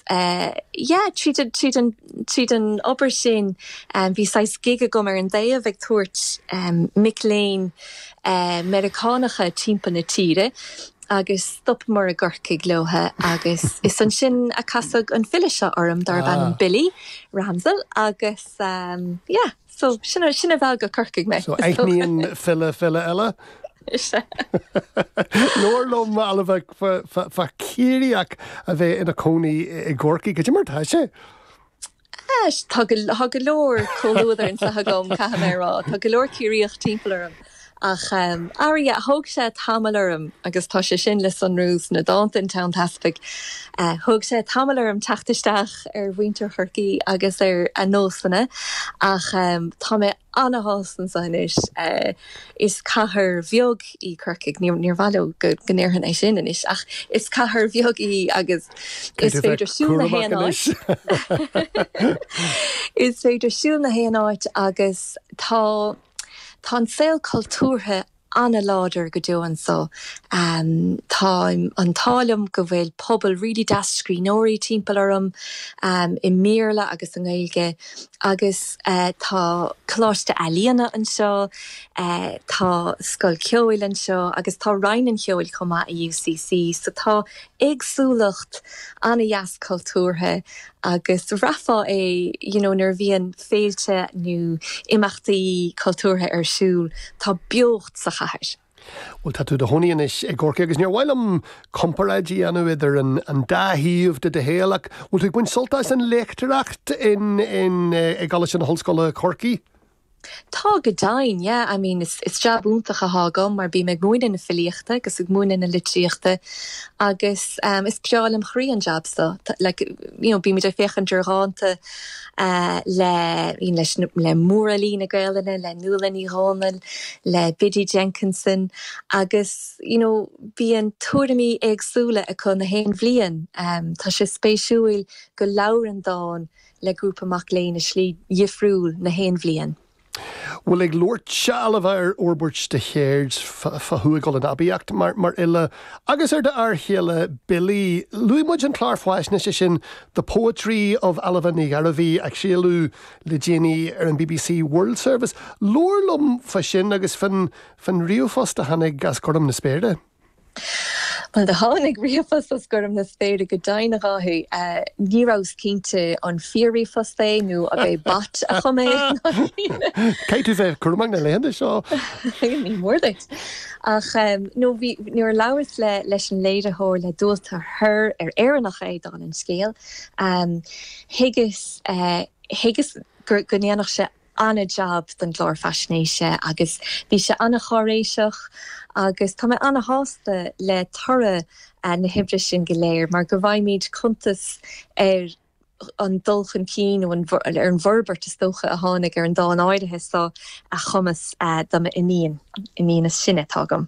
yeah, tríd an, tríd an, tríd an obair sin bhí saghas gig agam ar an dtaobh ag tabhairt mic léinn Meiriceánacha timpeall na tíre agus stopamar i gCorcaigh leo agus is ansin a casadh an file seo orm darb ainm Billy Ramsell agus yeah. So, sin a mheall go Corcaigh mé. So, aithníonn file file eile? Is ea. Labhair liom Ailbhe fá dtaobh Ciarraíoch a bheith ina cónaí i gCorcaigh, cad é mar tá sé. Tá go leor comhluadar anso agam caithfidh mé a rá. Tá go leor Ciarraíoch timpeall orm. Ach, arís, thóg sé tamall orm, agus tá sé sin le sonrú sna dánta in Tonn Teaspaigh, thóg sé tamall orm teacht isteach ar mhuintir Chorcaí agus ar a nósanna, ach tá mé ana-shásta anseo anois. Is cathair bheag í Corcaigh, níor mhaith liom go ndéarfainn é sin anois, ach is cathair bheag í agus is féidir siúl na haon áit. Is féidir siúl na haon áit agus tá. Tá an saol cultúrtha an-láidir go deo anso. Tá an t-ádh liom go bhfuil pobal really deas scríbhneoirí timpeall orm, i mBéarla agus i nGaeilge, agus tá coláiste ealaíne anseo, tá scoil cheoil anseo agus tá Roinn an Cheoil chomh maith i UCC, so tá éagsúlacht an-deas cultúrtha agus bhraithfeá é you know nuair a bhíonn féilte nó imeachtaí cultúrtha ar siúl, tá beocht sa chathair. Bhuel tá tú i do chónaí anois i gCorcaigh agus níor mhaith liom comparáid a dhéanamh idir an an dá thaobh de do shaol ach bhfuil tú ag baint sult as an léachtóireacht in, in, eh, i gColáiste na hOllscoile Chorcaí? Tá go deimhin, yeah, I mean is is jab iontach atá agam mar bím ag múineadh na filíochta agus ag múineadh na litríochta agus em is breá lem chroí an jab so, tá, like you know bímid ag féachaint ar dhánta eh le le mórfhilí na Gaelainne, le Nuala Ní Dhomhnaill, le Biddy Jenkinson agus you know bíonn tuairimí éagsúla acu na haon bhliain. Em tá sé spéisiúil go labhrann dán le grúpa mac léinn i slí dhifriúil na haon bhliain. Bhuel ag labhairt anseo Ailbhe ar fhorbairt do cheird fá chuaigh tú in aibíocht mar mar fhile agus ar d'fhear chéile Billy. Luaigh muid an clár faisnéise sin The Poetry of Ailbhe Ní Ghearbhuigh a craoladh le déanaí ar an bbc World Service. Labhair liom fa sin agus fán fán ríomhphost a tháinig as gorm na spéire. Bhuel, do tháinig ríomhphost as gorm na spéire go deimhin, a Dháithí. Ní rabhas cinnte an fíor-ríomhphost é nó ab é Bot a chum é ná cinn eile. Caithfidh tú bheith cúramach na laethanta seo! Ní mór duit. Ach nó bhí, nuair a labhras le, leis an léiritheoir, le Dualtagh Herr, ar Éireannach é, dála an scéil, thuigeas, thuigeas go ndéanfadh sé an-jab don gclár faisnéise agus bhí sé an-cháiréiseach agus tá mé an-shásta le toradh na hoibre sin go léir mar go bhfaighimid cuntas ar an dul chun cinn nó ar an bhforbairt is dócha a tháinig ar an dán áirithe so a chumas do m'iníon, iníon is sine atá agam.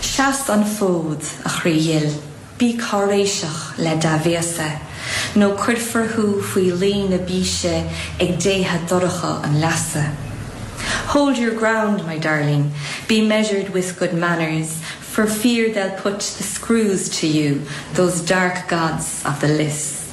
Seas an fód, a chroí dhil, bí cáiréiseach le dea-bhéasa, nó cuirfear thú faoi luí na bíse ag déithe dorcha an leasa. Hold your ground, my darling, be measured with good manners, for fear they'll put the screws to you, those dark gods of the lios.